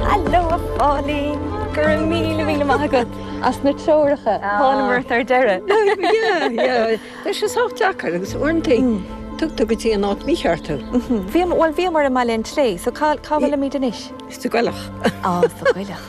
Haló a Phóilín! Go raibh míle míle maith agat as na treoracha. Thánamar ort ar deireadh. Tá sé sách deacair agus uaireanta tugtar go dtí an áit mícheart thú. Bhíomar, bhuel bhíomar i mBaile an tSléibhe, so cá bhfuilimid anois? Sa gCoilleach. Á, sa gCoilleach.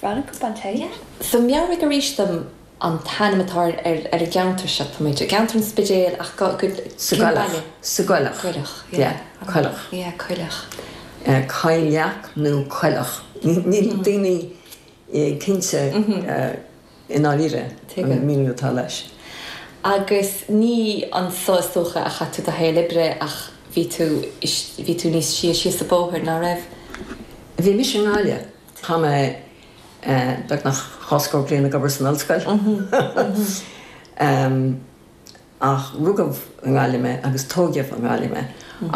Bhreathnaigh cupán tae. Yeah. So meabhraigh arís dom an t-ainm atá ar an gceantar seo. Tá muid i gceantar an Spidéil ach go, cén baile? Sa gCoilleach. Coilleach. Yeah. Coilleach. Yeah, Coilleach. Coilleach nó Coilleach. Níl daoine cinnte i ndáiríre faoin míniú atá leis. Agus ní anseo is dócha a chaith tú do shaol oibre ach bhí tú, bhí tú níos sia síos an bóthar, ná raibh? Bhí mise i nGaillimh. Tá mé beagnach dhá scór bliain ag obair san ollscoil ach rugadh i nGaillimh mé agus tóigeadh i nGaillimh mé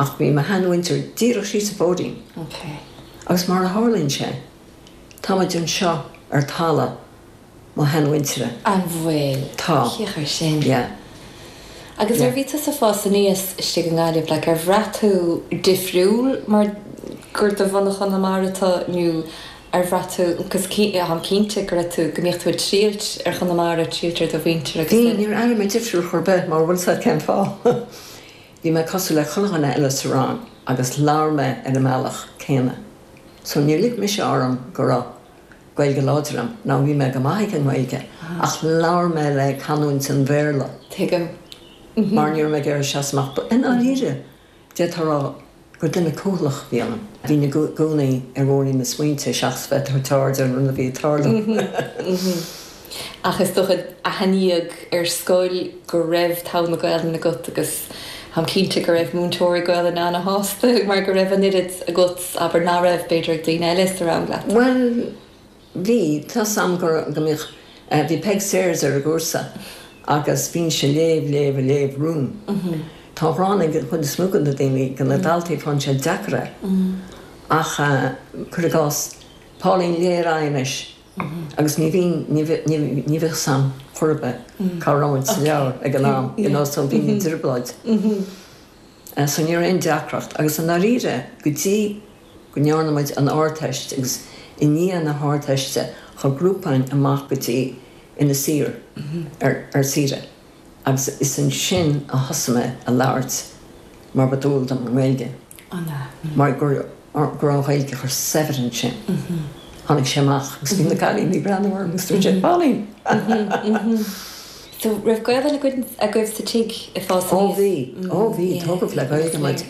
ach bhí mo sheanmhuintir díreach síos an bóithrín agus mar a tharlaíonn sé tá muid anseo ar talamh mo sheanmhuintire. An bhfuil? Tá. Féach air sin. Yeah. Agus nuair a Yeah. bhí tusa ag fás aníos istigh i nGaillimh, like, ar bhraith tú difriúil mar gur de bhunadh Chonamara tú nó ar bhraith tú, cos cí, táim cinnte go raibh tú, go mbíodh tú ag triall ar Chonamara, triall ar do mhuintir agus Bhí, sin. níor airigh mé difriúil chor ar bith, mar bhfuil 's a'd cén fáth. Bhí mé cosúil le chuile dhuine eile sa rang agus labhair mé ar an mbealach céanna. So níor lig mise orm go raibh. Gaeilge láidir agam, ná bhí mé go maith ag an nGaeilge, ach labhair mé le canúint an Bhéarla. Tuigim. Mhm. Mar ní raibh mé ag iarraidh seasamh amach, i ndáiríre, d'fhéadfá a rá gur duine cúthalach a bhí ionam. Bhínn i gcónaí ar bhóithrín na smaointe seachas bheith ag tabhairt aird ar an rud a bhí ag tarlú. Mhm. Mhm. Ach is dócha aithníodh ar scoil go raibh togha na Gaolainne agat agus táim cinnte go raibh múinteoirí Gaolainne ana-shásta mar go raibh an oiread agat, abair, nach raibh, b'fhéidir, ag daoine eile sa rang leat. Bhuel, bhí. Tá 's agam go raibh, go mbíodh. Bhí Peig Sayers ar an gcúrsa agus bhínnse ag léamh, léamh, ag léamh romham. Tá an ghráin ag an chuid is mó de na daoine, de na daltaí, faigheann siad deacair é. Ach, cuir i gcás, Pauline, léigh ar aghaidh anois. agus ní bhíonn, ní bhíodh 's a'm chor ar bith cá raibh muid sa leabhar ag an am, you know, so bhínn i dtrioblóid. So ní raibh aon deacracht, agus i ndáiríre, go dtí go ndearna muid an Ardteist, agus i ndiaidh na hArdteiste, chuaigh grúpa againn amach go dtí, Inis Oírr, ar, ar saoire. Agus is ansin a thosaigh mé a labhairt mar ba dual dom i nGaeilge. An ea? Mar go raibh an Ghaeilge chomh saibhir ansin. Tháinig sé amach agus bhí na cailíní ag breathnú orm agus dúirt siad, Pauline! So, raibh Gaolainn agaibh sa tigh ag fás aníos? Ó bhí. Ó bhí. Tógadh le Gaeilge muid.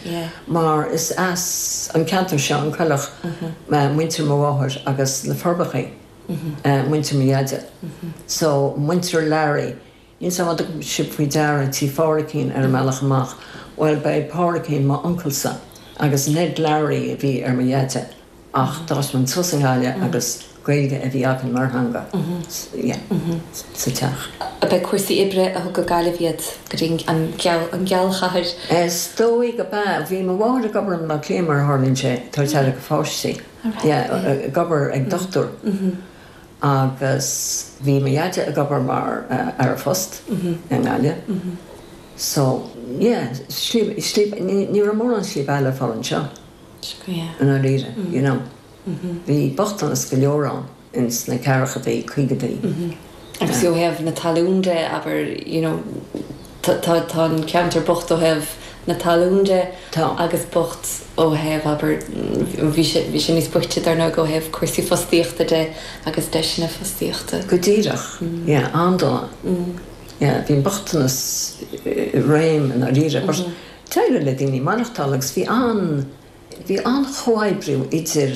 Mar is as an gceantar seo, an Coilleach, muintir mo mháthair agus Na Forbachaí muintir mo dheaide. So, muintir Larry. Níl sé, má tugann sibh faoi deara Tí Pháraicín ar an mbealach amach, bhuel, ba é Páraicín m'uncalsa, agus Ned Larry a bhí ar mo dheaide, ach d'fhás muid suas i nGaillimh agus Gaeilge a bhí againn mar theanga sa teach. Ab é cúrsaí oibre a thug go Gaillimh iad, go dtí an Ghealchathair? Is dóigh go mb'ea. Bhí mo mháthair ag obair in Áth Cliath, mar a tharlaíonn sé, ag tabhairt aire do pháistí, ag obair ag dochtúir. Agus bhí mo dheaide ag obair mar fhear poist i nGaillimh. So, yeah, slí, slí, ní raibh mórán slí bheatha le fáil anseo i ndáiríre, you know. Bhí bochtanas go leor ann ins na ceathrachadaí, caogadaí. Agus ó thaobh na talún de, abair, you know, Tá an ceantar bocht ó thaobh na talún de. Tá. Agus bocht ó thaobh, abair, bhí sé, bhí sé níos boichte, dar ndóigh, ó thaobh cúrsaí fostaíochta de agus deiseanna fostaíochta. Go díreach. Yeah, ar ndóigh. Yeah, bhí an bochtanas i réim i ndáiríre. But d'éirigh le daoine maireachtáil agus bhí an, bhí an-chomhoibriú idir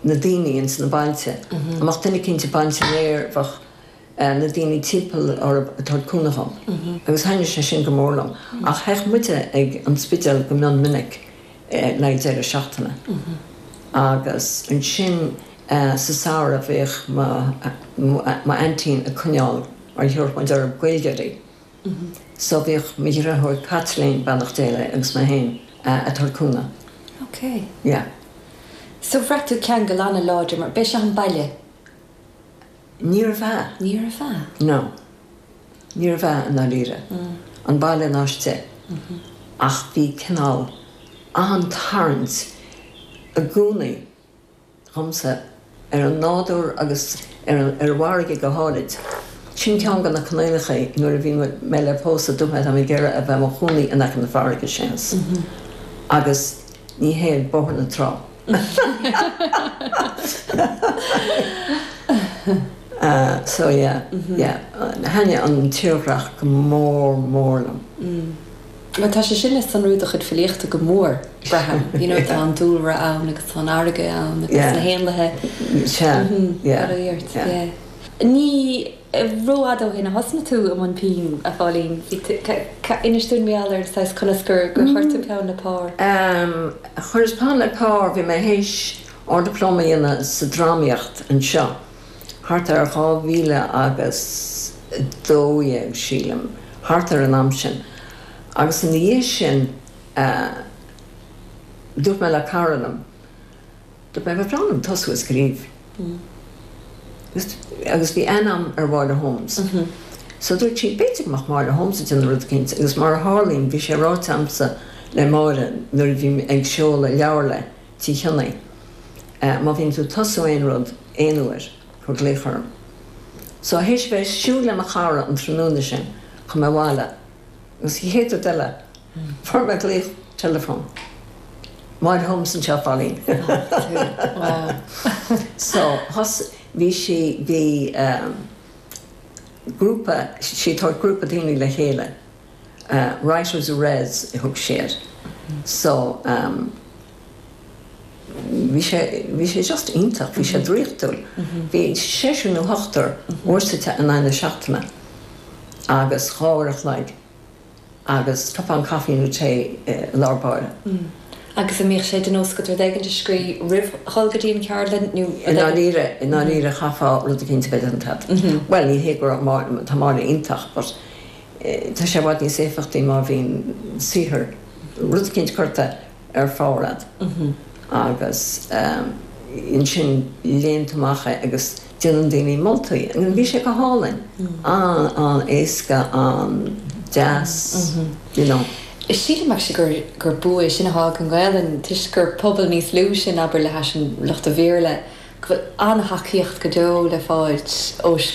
na daoine ins na bailte. Dhá mbeadh duine eicínt ag baint an fhéir, bheadh. na daoine timpeall orthu ag tabhairt cúnamh dhóibh agus thaithnigh sé sin go mór liom. Ach théadh muide ag an Spidéal go mion minic le haghaidh deireadh seachtaine agus ansin sa samhradh bhíodh m'aintín ag coinneáil, mar thiúrfadh muid orthu, Gaeilgeoirí so bhíodh mo dheirfiúr Caitlín, beannacht Dé léi, agus mé féin ag tabhairt cúnamh. Ok. Yeah. So bhraith tú ceangal an-láidir mar b'é seo an baile? Níorbh ea. Níorbh ea. No. Níorbh ea i ndáiríre. An baile ná an Spidéal. Ach bhí cineál an-tarraingt i gcónaí agamsa ar an nádúr agus ar an bhfarraige go háirid. Sin ceann de na coinníollacha nuair a bhí mé le pósadh, dúirt mé, tá mé ag iarraidh a bheith i mo chónaí in aice na farraige, sin é. Agus ní hé ag Bóthar na Trá. Thaitnigh an tírdhreach go mór mór liom. Tá sé sin le sonrú i do chuid filíochta go mór, braithim. You know, tá an dúlra ann agus tá an fharraige ann agus na héanlaithe. Sea. Fada a fhiort. Ní Ní rófhada ó shin a thosnaigh tú i mbun pinn, a Phóilín. Inis dúinn beagán ar an saghas, conas gur chuir tú peann le pár? Chuireas peann le pár, bhí mé théis Ard-Dioplóma a dhéanamh sa Drámaíocht anseo, thart ar dhá mhíle agus dó dhéag, sílim, thart ar an am sin. Agus ina dhiaidh sin, dúirt mé le cara liom, Dá mbeinn in ann tosú ag scríobh agus bhí aithne aici ar Mháire Holmes. So dúirt sí, b'fhéidir go mbeadh Máire Holmes ag déanamh rud éicint agus mar a tharlaíonn bhí sé ráite agamsa le Máire nuair a bhí mé ag seoladh leabhar léi, Tí Chionaoith, má bhíonn tú ag tosú aon rud aon uair, cuir glaoch orm. So théis bheith ag siúl le mo chara an tráthnóna sin, chuaigh mé abhaile agus céard eile Fuair mé glaoch teileafóin. Máire Holmes anseo, Pauline. So, thus, bhí sí, bhí grúpa, sí ag tabhairt grúpa daoine le chéile, writers-in-res a thug siad. So, bhí sé, bhí sé just iontach, bhí sé draíochtúil. Bhí seisiún nó ocht n-uaire sa tseachtain, in aghaidh na seachtaine, agus dhá uair a chloig. agus cupán caifí nó tae i lár baill. Agus an mbíodh sé de nós agat rud éigin a scrí roimh dhul go dtí an cheardlann nó rud éigin? I ndáiríre, i ndáiríre chaithfeá rud éicint a bheith déanta agat. Bhuel, ní hé go raibh Máire, tá Máire iontach but tá sé i bhfad níos éifeachtaí má bhíonn saothar, rud éicint curtha ar pár agat agus ansin léann tú amach é agus déanann daoine moltaí. Bhí sé go hálainn, an-éasca, an-deas, you know. Sílim actually gur gur bua é sin a tháinig ón nGaelainn toisc gur pobal níos lú sinn, abair, le hais lucht an Bhéarla, go bhfuil an-tacaíocht go deo le fáilt ó.